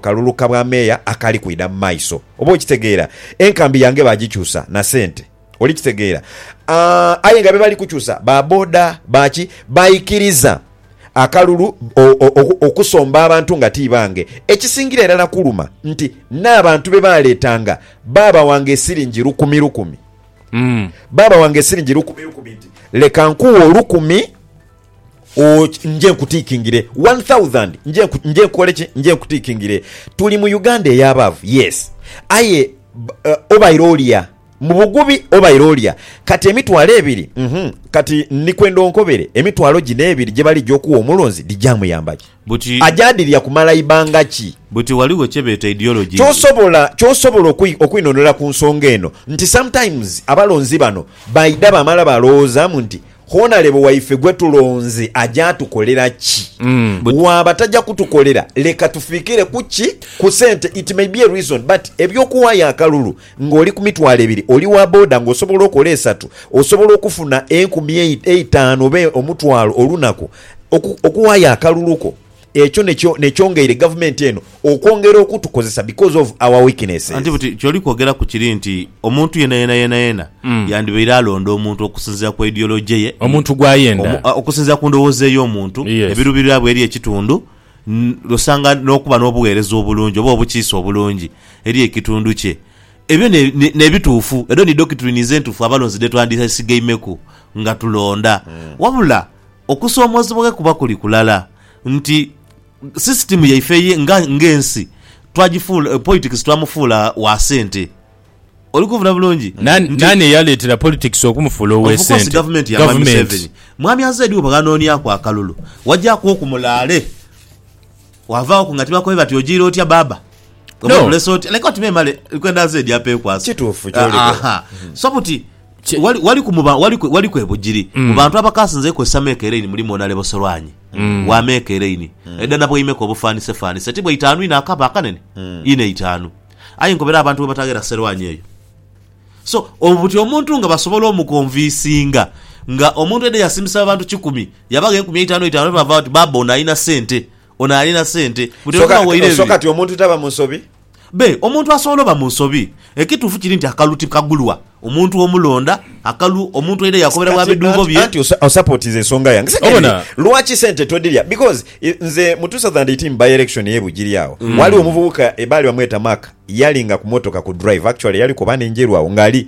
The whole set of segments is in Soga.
Kalulu ka bwa meeya akaali kwidha mu maiso. Oba okitegeera. Enkambi yange baagikyusa na sente. Oli kitegeera? Ah, aye nga be bali kukyusa ba boda, ba ki, baikiriza akalulu o, o, o, okusomba abantu nga ti bange. Ekisingira irala kuluma nti n'abantu be baaleetanga baabawanga esiringi lukumi lukumi. Baabawanga esiringi lukumi lukumi nti, Leka nkughe olukumi. Oh, nje nkutiikingire. One thousand, nje nku, nje nkole ki? Nje nkutiikingire. Tuli mu Uganda ey'abaavu, yes. Aye, b, uh, obaire olya. Mu bugubi, obaire olya. Kati emitwalo ebiri, uh-huh, kati ni kwenda onkobere, emitwalo gino ebiri gye baligya okuwa omulunzi, dhigya muyamba ki? buti. Ajaadhirira kumala ibanga ki? Buti ghaligho kyebeeta ideology nti. Kyosobola kyosobola okwinhonhera ku nsonga eno nti sometimes abalonzi bano baidha bamala balowozamu nti Honalebo waife gwetulonze aja atukolera ki? Waaba taja kutukolera leka tufikire ku ki? Ku sente? It may be a reason but ebyokuwayo akalulu nga oli ku mitwalo ebiri oli wa boda nga osobola okola esatu osobola okufuna enkumi eitaanu oba omutwalo olunaku, okuwayo akalulu ko ekyo nekyongeire gavumenti eno okwongera okutukozesa because of our weaknesses. Anti kyoli kwogeraku kiri nti omuntu yenayena yenayena yandibaire alonda omuntu okusinzira ku ideology ye, Omuntu gwayenda. okusinzira ku ndowooza ey'omuntu, Yes. ebiruubirirwa bye eri ekitundu ni osanga n'okuba n'obugheereza obulungi oba obukiise obulungi eri ekitundu kye. Ebyo ne ne nebituufu edho ni doctrines entuufu abalonzi dhetwandiyesigaimeku nga tulonda. Wabula. Okusoomoozebwa ghe kuba kuli kulala nti sisitimu yaife ye nga ng'ensi twagifuula, politics twamufuula wa sente. Oli kunvuna bulungi? Nti. Naani eyaleetera politics okumufuula ow'esente? Of course gavumenti ya Mwami Museveni. Mwami azzeedi bwe banooniaku akalulu, wajaku oku mulaale, wavaawo ku nga tibakoye bati ojiire otya baaba? Oba otulese otya? Leka otime male, ndikwenda azzeedi apeekwase. Kituufu ky'oliko. Aha. So buti. Kye- wali wali ku muba- wali ku- wali kwebujiri mu bantu abakaasinze ekozesa meeka ereini mulimu onalebosolwanyi wa meeka ereini edha nabwaimeku obufaanisefaanise ti bwaitaanu inho akaba akanene inho eitaanu aye nkobere abantu bwebataghera serwanyi eyo so obu buti omuntu nga basobola omukonviisinga nga omuntu edha eyasimbisa abantu kikumi yabagho enkumi eitaanu eitaanu ate bavagho ti baba ono alina sente ono alina sente buti Soka- omubawaire osoka ebiri ti omuntu taba mu nsobi Be, omuntu asobola oba mu nsobi. Ekituufu kiri nti akalu tikagulwa. Omuntu omulonda, akalu, omuntu eira yakobera wa bidhuubo bye. Anti osapotinze ensonga yange. Secondly, lwaki sente todhirya? Because nze mu two thousand eighteen by election eye Bugiri agho, ghaligho omuvubuka ebaali bamweta Mark, yalinga ku motoka ku drive, actually yali koba n'enjeru agho, ngali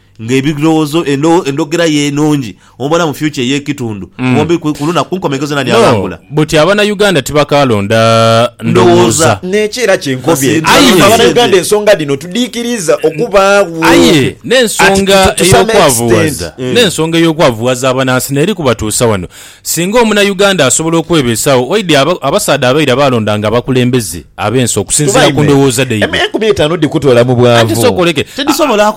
Nga ebilowozo eno endhogera ye enhungi omubona mu future eye kitundu bombi ku lunaku kunkomekezo yona lya langula. No buti abana Uganda tibakalonda ndowooza. Nekyo era kye nkobye nti Aye. abana Uganda ensonga dhino tudhikiriiza okubaagho. Aye n'ensonga ey'okwavughaza n'ensonga ey'okwavughaza abanansi n'eri kubatuusa wano. Singa omunayuganda asobola okwebesawo waidhi abasaadha abaira baalondanga abakulembeze ab'ensi okusinziira ku ndowooza dhaibwe. Anti sooka oleke,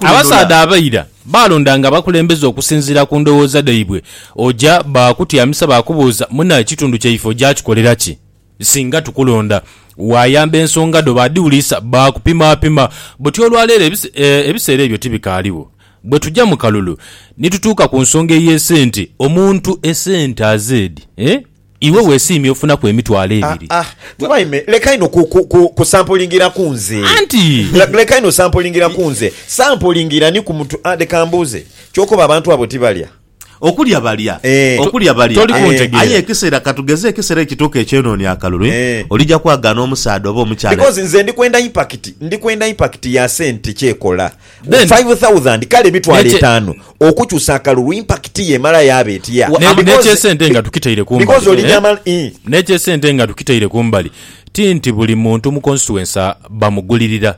abasaadha abaira baalondanga abakulembeze okusinziira ku ndowooza dhaibwe. Oja baakutyamisa baakubuuza, Muna, ekitundu kyaife ogya kikolera ki? Singa tukulonda, waayamba ensonga dho baadhiwulisa baakupimaapima. Buti olwaleero ebiseera ebyo tibikaaliwo. Bwe tuja mu kalulu ni tutuuka ku nsonga ey'esente, omuntu esente azeedhi? Eeh, iwe weesiimye ofunaku emitwalo ebiri. Ah, ah, waime, leka inho ku, ku, ku, kusampulingira ku nze. Anti. La, leka inho sampulingira ku nze. Sampulingira ni ku mutu. Ah, leka mbuuze, kyoka oba abantu abo tibalya? Okulya balya, Eh. okulya balya. Toli kuntegeera. Aye ekiseera, ka tugeze ekiseera ekituuka eky'enoni akalulu, Eh. olija kwagaana omusaadha oba omukyala. Because nze ndi kwenda impact, ndi kwenda impact ya sente kyekola. Then- 5000 kale emitwalo Neche- etaano okukyusa akalulu impact ye emala yaba etya? Wa- Ne- Ah, because- nekyesente nga tukitaire kumbali Because oli eh? nyama- eh. nekyesente nga tukitaire kumbali ti nti buli muntu mu constituency a- bamugulirira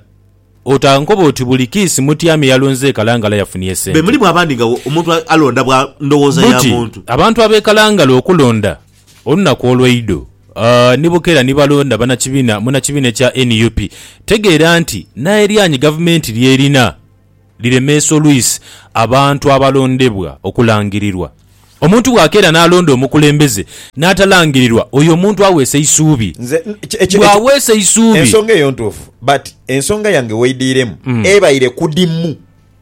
Otankoba oti buli kiisi Mutyami yalonze e Kalangala yafunia esente. Be mulimu abandi nga omuntu alondabwa ndhowooza ya muntu. Abantu ab'e Kalangala okulonda olunaku olweidho ni bukeera ni balonda banakibiina munakibiina ekya nup. Tegeera nti nae eryanyi gavumenti lyerina liremeesa olwisi abantu abalondebwa okulangirirwa. Omuntu bw'akeera n'alonda omukulembeze n'atalangirirwa, oyo omuntu aweesa eisuubi. Nze, bwe aweesa eisuubi. Ensonga eyo ntuufu, but ensonga yange weidhiremu ebaire ku dhimu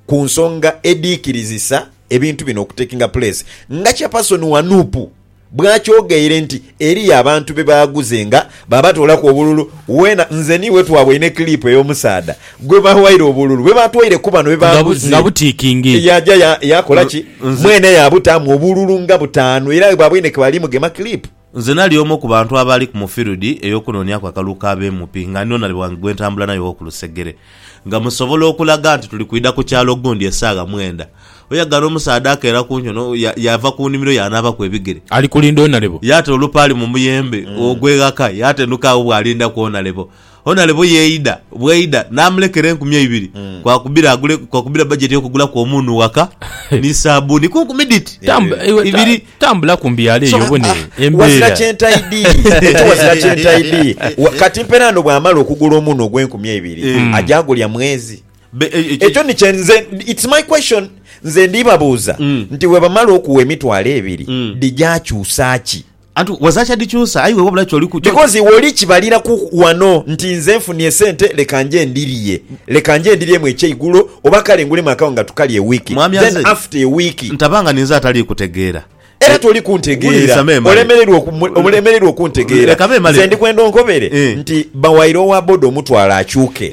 ku nsonga edhiikirizisa ebintu bino okutekinga pulesi nga Chairperson wa nup bw'akyogeire nti eriyo abantu be baaguze nga Baabatoolaku obululu weena. Nze ni iwe twaboine kilipu ey'omusaadha gwe baawaire obululu bwe baatwaire ku bano be baaguze. Yaaja yaakola ki? Mwene yaabutaamu obululu nga butaanu era bwe baaboine ke bali mugema kilipu. Nze nali omu ku bantu abaali ku mufiridi ey'okunooniaku akalulu ka beemupi nga ndi onale wange gwe ntambula naye ow'oku lusegere nga musobola okulaga nti tuli kwidha ku kyalo gundi esaawa mwenda. Oyagala omusaadha akeera ku nkyo no ya, yaava ku nimiro yaanaabaku ebigere. Ali kulinda onalebo. Yaata olupaali mu muyembe ogw'eghaka, yaatenduka agho bw'alindaku onalebo. Onalebo yeidha, bw'aidha naamulekera enkumi eibiri, kwakubira agule, kwakubira bajeti y'okugulaku omunhu ghaka ni saabbuuni ku nkumi dhiti? Tambu, iwe, ta, Ibiri. tambulaku mbyalo eyo obone Wazira embeera. kye ntaidhi, ekyo wazira kye ntaidhi. Wa- Kati mperando bw'amala okugula omunhu ogw'enkumi eibiri, aja agulya mwezi? Ekyo ni kye nze, it's my question, nze ndi babuuza nti bwebamala okuwa emitwalo ebiri dhija kyusa ki? Anti was akya dhikyusa aye iwe wabula kyoli ku. Because iwe oli kibalira ku wano nti nze nfunye esente leka nje ndhirye, leka nje ndhiryemu ekyeigulo oba kale ngulemu akawa nga tukalya e week then after e week. Ntaba nga ninze atali kutegeera. Era toli kuntegeera, olemererwa okuntegeera. Nze ndikwenda onkobere nti bawaire owa boda omutwalo akyuke.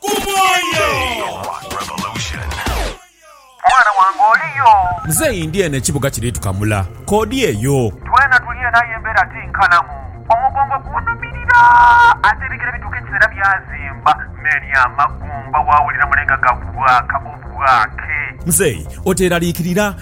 ku mwoyo. Mwana wange oli yo? Muzeeyi ndi eno ekibuga kiri tukamula. K'odi eyo. Twena tuli eno aye embeera ti nkalamu. Omugongo gunhumirira ate ebigere bituuka ekiseera byazimba. Mmeenia amagumba waawulira mule nga gabwaaka obwaake. Muzeeyi oteeraliikirira.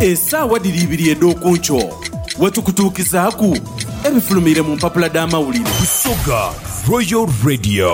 Esaawa dhiri ibiri edh'oku nkyo we tukutuukizaaku ebifulumiire mu mpapula dh'amawulire. Busoga Royal Radio.